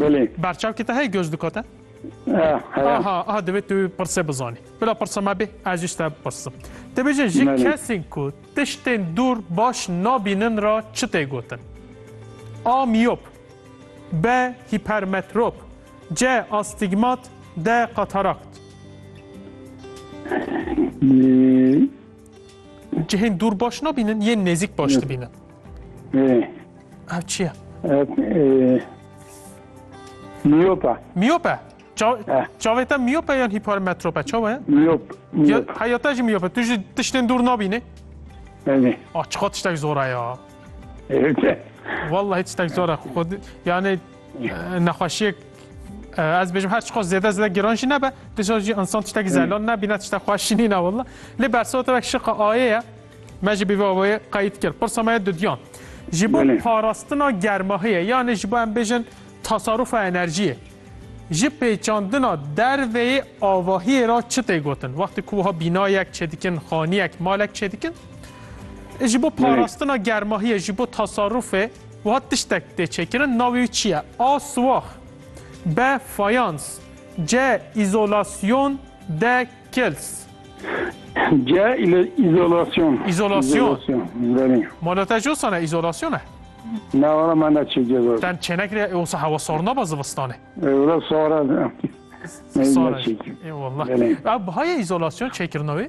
Belê. Berçavkê te heye göz dikate? Aha, aha divê tu pirsê bizanî. Bila pirsa me bê, ez jî te bipirsim. Te bêje ji kesên ku tiştên dûr baş nabînin ra çi tê gotin? A. Miyop B. Hipermetrop C. Astigmat D. Katarakt Cihên dûr baş nabînin yên nêzîk baş dibînin. Ev çi ye? Miyope. Miyope. Çavê te miyope yan hipermetrope çawa ye? Miyop. Heya te jî miyope. Tu jî tiştên dûr nabînî? Belê. Ah çiqa tiştek zora ya. Vallahi tiştek zora. Yani نەخوشیێک ez bêjim her çiqas zêde zêde giran jî nebe dişa jî insan tiştekî zelan nebîne tişte xweşînî ne willa lê bersa te şiqa ayê ye me jî bîvê avayê qeyît kir pirsa me dudiyan ji bo parastina germahiyê yanê ji bo em bêjin tasarufa enerjiyê ji pêçandina derveyê avahiyê ra çi tê gotin wextê ku wiha bînayek çêdikin xaniyek malek çêdikin ji bo parastina germahiyê ji bo tasarufê Wiha tiştek tê çêkirin navê wî çi ye? A. Siwax B. Fayans C. Îzolasyon D. Kils C. Îzolasyon Îzolasyon Mala te cosan e îzolasyon e? Ne wala me ne çê ceza. Ten çênekirê e wisa hewa sarna ba zivistanê. Wala sara. Sara. Eyvallah. Ev bihayê izolasyon çêkirina wê?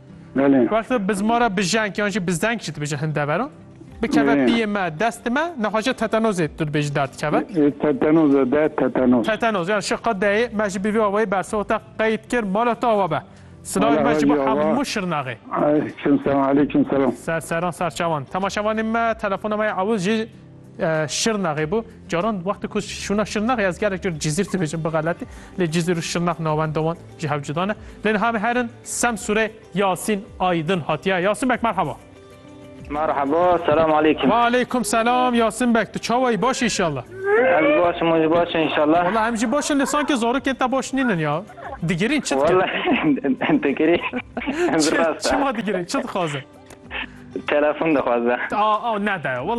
Belê. Wexto biz ma re bijenk yan jî bizdenk jî dibêjin hin dever o. Bikeve Ee. piyê me, destê me, nexweşe tetanozê tu dibêjî der dikeve. Ee, Tetanoz e de tetanoz. Tetanoz yani şi qe deyê me jî bi vî awayî bersivê te qeyd kir mala te awa be. Silavê Mala me jî bi Hacî Awa. Hamû Şirnaxê. Aleyküm selam, aleyküm selam. Ser seran serçavan. Temaşevanê me telefona me ya ewil jî Şirnaxê bû. Caran wextê ku şûna Şirnaxê ez gelek cor Cizîr dibêjim bi xeletî. Lê Cizîr û Şirnax navenda wan ji hev cuda ne. Lê niha em herin Semsûrê Yasîn Aydin hatiye. Yasîn bek merhaba. Merhaba, selam aleykum. Wa aleykum selam Yasîn bek. Tu çawa yî? Baş înşallah. Ez başim, hûn jî baş e înşallah. Wala em jî baş in lê sankê zarokên te baş nînin ya. Digirîn çi dikin? Wala digirîn. Çima digirîn? Çi dixwazin? Telefon dixwaze. A, a, nede.